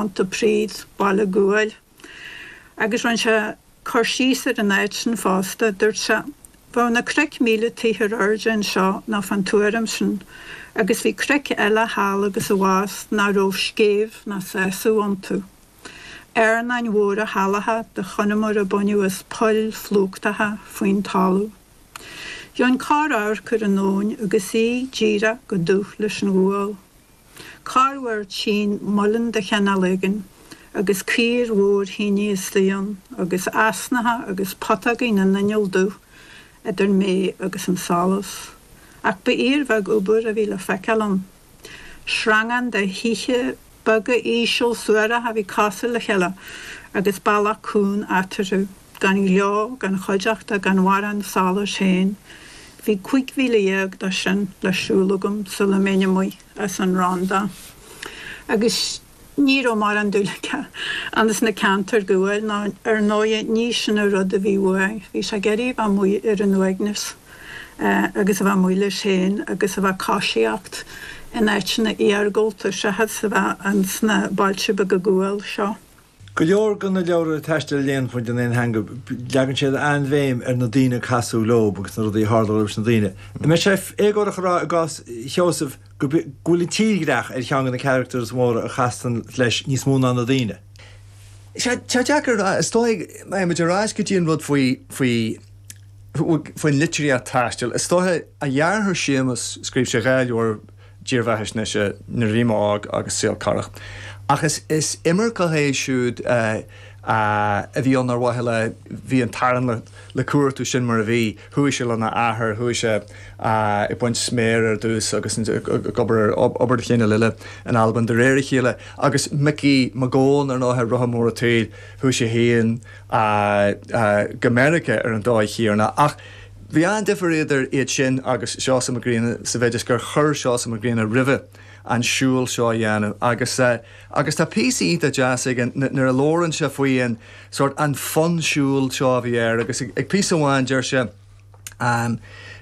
Pontypridd, baile guail. Agus rinne sé cur síos ar an áit sin fosta. Dúirt sé, Bheadh na cnoic míle troigh ar airde anseo nó fán tuairim sin, agus bhí cnoic eile thall agus abhus nach raibh scéimh ná sásamh iontu. Carnáin mhóra shalacha de chonamar a baineadh as poill phlúchtacha faoin talamh. Gheobhainn corr-amharc ar an abhainn agus í díreach chomh dubh leis an ghual. Corruair tchínn muileann de chineál éigin agus caor mhór thineadh istigh ann agus easnacha agus putógaí na n-inneall dubh idir mé agus an solas. Ach ba fhíorbheag obair a bhí le feiceáil ann. Sreangán de thithe beaga íseal suaracha a bhí cosúil le chéile agus bealach cúng eatarthu. Gan gleo, gan chuideachta, gan mhórán solais féin, bhí cúig mhíle dhéag de sin le siúl agam sula mbeinn amuigh as an Rhondda. Agus ní raibh mórán dúil aige ins na ceantair guail, nó ar ndóighe ní sin an rud a bhí uaidh. Bhí sé ag iarraidh a bheith amuigh ar an uaigneas agus a bheith amuigh leis féin agus a bheith ag coisíocht in áiteanna iargúlta seachas a bheith ins na bailte beaga guail seo. Go leor de na leabhra taistil a léann muid in aon theanga, leagann siad an-bhéim ar na daoine a casadh leo agus na rudaí a tharla dóibh leis na daoine. An mbeadh sé éagórach a rá i gcás Sheosaimh go bhfuil an tírdhreach ar cheann de na characters móra a chasann leis níos mó ná na daoine? Tá, tá deacair a rá. Is dóigh, má théann muid ar ais go dtí an rud faoi, faoi, faoin litríocht taistil, is dócha a dheartháir Séamus, scríobh sé dhá leabhar, dírbheathaisnéise Nuair a Bhí Mé Óg agus Saol Corrach. Ach is imirceach é siúd a bhí ann ar mhaithe le bhí an t-arán le cuartú sin mar a bhí. Chuaigh sé lena athair, chuaigh sé ag baint sméar ar dtús agus ag obair ar obair de chineál eile in Albain de réir a chéile agus Micí Mac Gabhann, ar ndóighe, Rotha Mór an tSaoil, chuaigh sé féin go Meiriceá ar an dóigh chéanna. Ach. Bhí an-difear idir iad sin agus Seosamh Mac Grianna sa mhéid is gur chuir Seosamh Mac Grianna roimhe an siúl seo a dhéanamh agus agus tá píosa iontach deas aige nuair a labhrann sé faoi an sórt an fonn siúil seo a bhí air agus ag píosa amháin deir sé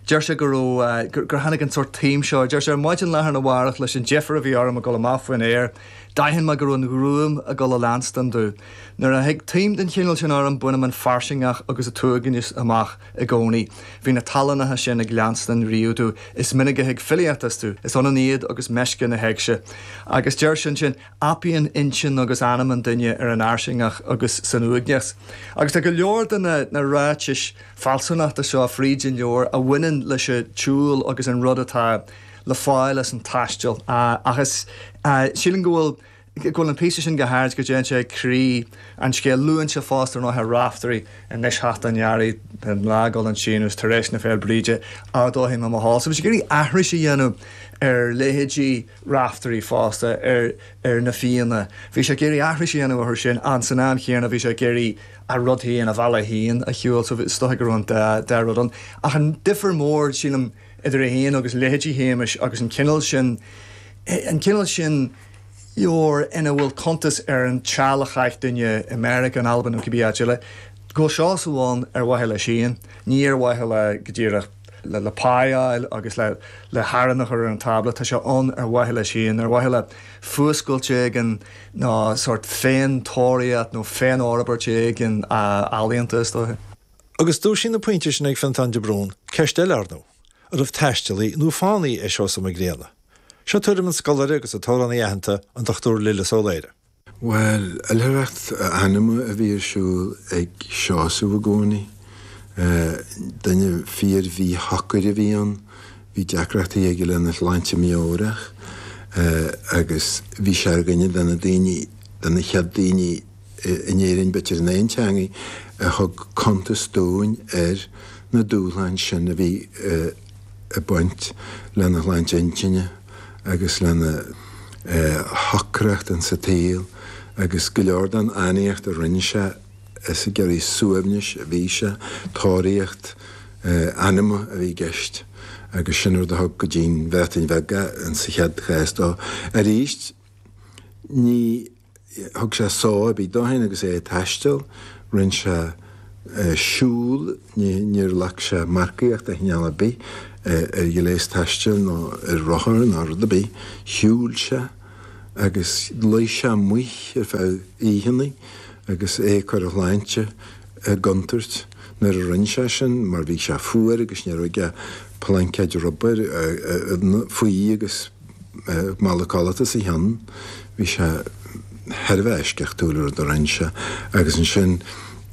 deir sé go raibh gur tháinig an sórt taom seo air deir sé, 'Ar maidin lá arna mhárach leis an deifir a bhí orm a dhul amach faoin aer D'aithin mé go raibh an ghruaim ag dul a leanstan domh. Nuair a thig taom den chineál sin orm, bainim an fairsingeach agus an t-uaigneas amach i gcónaí. Bhí na tallannacha sin ag leanstan riamh domh. Is minic a thig filíocht astu. Is ionann iad agus meisce na héigse. Agus deir sé ansin, apaíonn intinn agus anam an duine ar an fhairsingeach agus san uaigneas. Agus tá go leor de na ráitis fealsúnachta seo fríd an leabhar a bhaineann leis an tsiúl agus an rud atá. le fáil as an taisteal ach is sílim go bhfuil go bhfuil an píosa sin go háirid go dtéann sé ag croí an scéil. Luann sé fosta Raiftearaí anois teacht an Earraigh beidh an lá ag dul chun síneadh agus tar éis na Féil' Bríde ardóidh mé mo sheol. So bhí sé ag iarraidh aithris a dhéanamh ar leithéidí Raiftearaí fosta ar ar na Fianna. Bhí sé ag iarraidh aithris a dhéanamh orthu sin an san am chéanna bhí sé ag iarraidh a rud féin a bhealach féin a shiúl so is dócha go raibh an dá rud ann. Ach an difear mór sílim, idir é féin agus leithéidí Shéamais agus an cineál sin, an cineál sin leabhar ina bhfuil cuntas ar an tseal a chaith duine i Meiriceá, in Albain nó cibé áit eile, go bhfuil Seosamh ann ar mhaithe leis féin, ní ar mhaithe le, go díreach, le pá a fháil agus le harán a chur ar an tábla, tá sé ann ar mhaithe leis féin, ar mhaithe le fuascailt éigin nó sórt féin-tóraíocht nó féin-fhorbairt éigin ealaíonta, is dóiche. Agus dúisíonn na pointí sin ag Fionntán de Brún ceist eile ar ndóigh, an raibh taistealaí nó fánaí i Seosamh Mac Grianna? Seo tuairim an scoláire agus an t-amhránaí aitheanta, an Dr Lillis Ó Laoire. Bhuel, oilithreacht anama a bhí ar siúl ag Seosamh i gcónaí. Duine fíor-mhíshocair a bhí ann, bhí deacrachtaí aige lena shláinte meabhrach agus bhí sé ar dhuine de na daoine, de na chéad daoine, In Éirinn, b'fhéidir in aon teangaidh a thug cuntas dúinn ar na dúshláin sin a bhí ag baint lena shláinte intinne agus lena shocracht an sa tsaol agus go leor den fhánaíocht a rinne sé is ag iarraidh suaimhnis a bhí sé, tóraíocht anama a bhí i gceist agus sin an rud a thug go dtí'n Bhreatain Bheag é, sa chéad chás dó. Arís, ní. Thug sé só ar bith dó féin agus é ag taisteal, rinne sé siúl, níor ghlac sé marcaíocht de chineál ar bith ar ghléas taistil nó ar rothar ná rud ar bith, shiúil sé agus luigh sé amuigh ar feadh oícheanna agus é ag cur a shláinte i gcontúirt nuair a rinne sé sin mar bhí sé fuar agus ní raibh aige ach plaincéad rubair faoi agus Mála codlata os a chionn, bhí sé thar a bheith eisceachtúil, an rud a rinne sé, agus ansin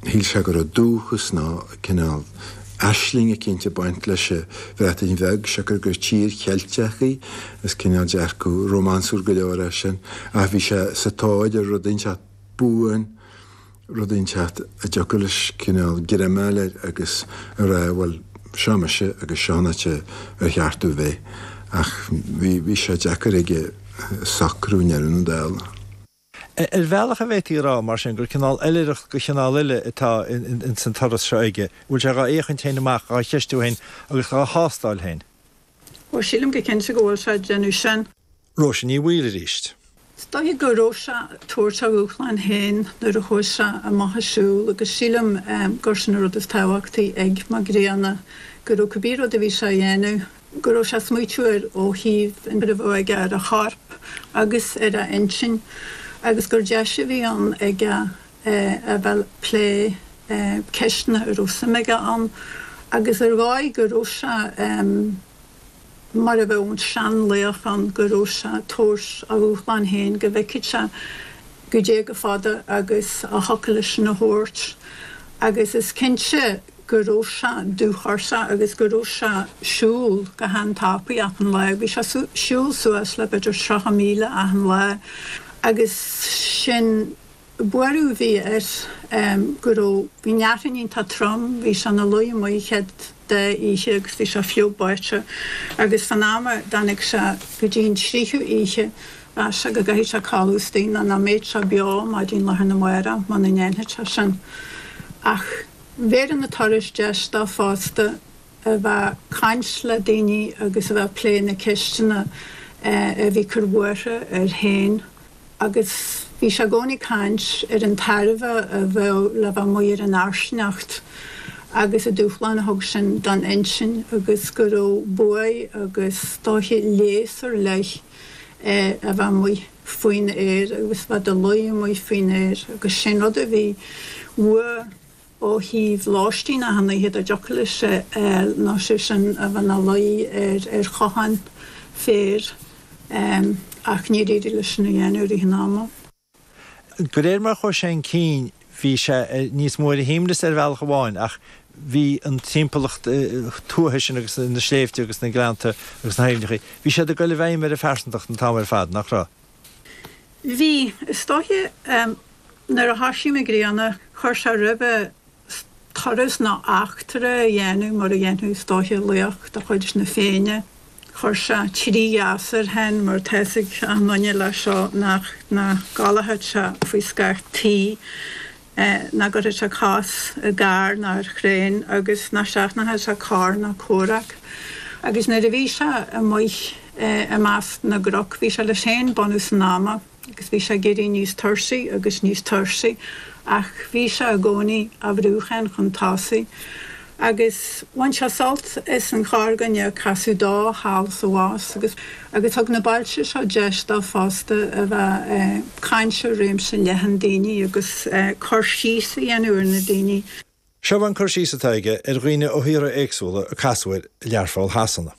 shíl sé go raibh dúchas nó cineál aisling eicínt ag baint leis an Bhreatain Bheag, siocair gur tír Cheilteach í, is cineál dearcadh rómánsúil go leor é sin, ach bhí sé sa tóir ar rud inteacht buan, rud inteacht a dtiocfadh leis cineál greimeáil air agus a rá bhuel seo mise agus seo an áit ar cheart domh a bheith ach bhí sé deacair aige socrú i ndeireadh na dála. Ar bhealach an bhféadfaí a rá mar sin gur cineál oilithreacht de chineál eile atá ins an turas seo aige, an bhfuil sé dhá fhéachaint féin amach, dhá cheistiú féin agus dhá thástáil féin? Ó sílim go cinnte go bhfuil sé ag déanamh sin. Róise Ní Bhaoill arís. Is dóigh go raibh sé ag tabhairt a dhúshláin féin nuair a chuaigh sé amach ag siúl agus sílim gur sin an rud is tábhachtaí ag Mac Grianna, go raibh cibé rud a bhí sé a dhéanamh, go raibh sé ag smaoitiú air ó thaobh an bhrú a bheadh aige ar a chorp agus ar a intinn agus gur deis a bhí ann aige a bheith ag plé ceisteanna a raibh suim aige ann agus ar dhóigh go raibh sé. mar a bheadh an seanlaoch ann, go raibh sé ag tabhairt a dhúshláin féin, go bhfeicfeadh sé goidé chomh fada agus a thiocfadh leis sin a thabhairt. Agus is cinnte go raibh sé dúchortha agus go raibh sé ag siúl go han-tapaidh achan lá. Bhí sé ag siúl suas le b'fhéidir 30 míle achan lá agus sin. Buaireadh a bhí air go raibh bhí an fhearthainn iontach trom bhí sé ina luí amuigh an chéad dá oíche agus bhí sé fliuch báite agus fán am a dtáinig sé go dtí an tríú oíche mheas sé go gcaithfeadh sé codladh istigh nó nach mbeadh sé beo maidin lá arna mhárach muna ndéanfadh sé sin ach bhéarfadh na turais deis dó fosta a bheith ag caint le daoine agus a bheith ag plé na ceisteanna a bhí ag cur buartha air féin. agus bhí sé i gcónaí ag caint ar an tairbhe a bheadh le bheith amuigh ar an fhairsingeacht agus an dúshlán a thug sin don intinn agus go raibh buaidh agus is dóiche léas ar leith a bheith amuigh faoin aer agus a bheith i do luí amuigh faoin aer agus sin an rud a bhí uaidh ó thaobh lóistín achan oíche dá dtiocfadh leis ar, nó sé sin a bheith ina luí ar ar chochán féir, ach níor éirigh leis sin a dhéanamh i rith an ama. De réir mar a chuaigh sé chun cinn bhí sé níos mó ar a shuaimhneas ar bhealach amháin ach bhí an timpeallacht tuaithe sin agus na sléibhte agus na gleannta agus na haibhneacha, bhí siad ag dul i bhfeidhm ar a phearsantacht an t-am ar fad, nach raibh? Bhí, is dóiche, nuair a thoisigh Mac Grianna, chuir sé roimhe turas nó eachtra a dhéanamh, mar a dhéanfadh, is dóiche, laoch de chuid na Féinne. Chuir sé trí gheasa air féin, mar tá fhios ag achan nduine leis seo nach gcodlódh sé faoi scáth tí. ii, nach gcuirfeadh sé cos i gcarr ná ar thraein agus nach seachnódh sé cath ná comhrac. Agus nuair a bhí sé amuigh i measc na gcnoc bhí sé leis féin bunús an ama agus bhí sé ag éirí níos tuirsí agus níos tuirsí ach bhí sé i gcónaí á bhrú féin chun tosaigh. agus bhain sé sult as an chorrdhuine a casadh dó thall is abhus agus agus thug na bailte seo deis dó fosta a bheith ag caint le réimse leathan daoine agus cur síos a dhéanamh ar na daoine. Seo an cur síos atá aige ar dhaoine ó thíortha éagsúla a casadh air i Learpholl Shasana.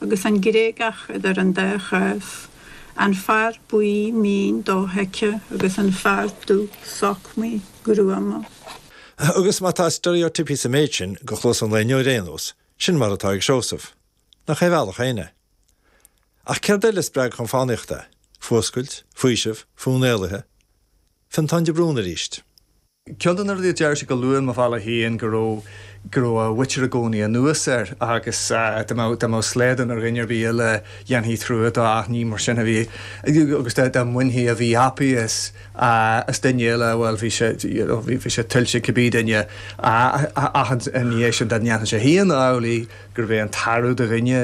agus an Gréagach idir an dá chás, an fear buí mín dothuigthe agus an fear dubh sochmaí gruama. Agus má tá steiréotíopaí sa méid sin do chluas an lae inniu ar aon nós, sin mar atá ag Seosamh. Nach é a bhealach féin é. Ach céard eile a spreag chun fánaíochta é? Fuascailt? Faoiseamh? Fonn éalaithe? Fionntán de Brún arís. Ceann de na rudaí a deir sé go luath i Mo Bhealach Féin, go raibh, go raibh a mhuintir i gcónaí anuas air agus dá mbeadh, dá mbeadh slaghdán ar dhuine ar bith eile dhéanfaí trua dó ach ní mar sin a bhí agus dá, dá mbainfí a mhíthapa as, as duine eile, bhuel, bhí sé, you know, bhí, bhí sé tuillte ag cibé duine ach ina dhiaidh sin dá ndéanfadh sé féin amhlaidh, gurbh é an tarbh de dhuine.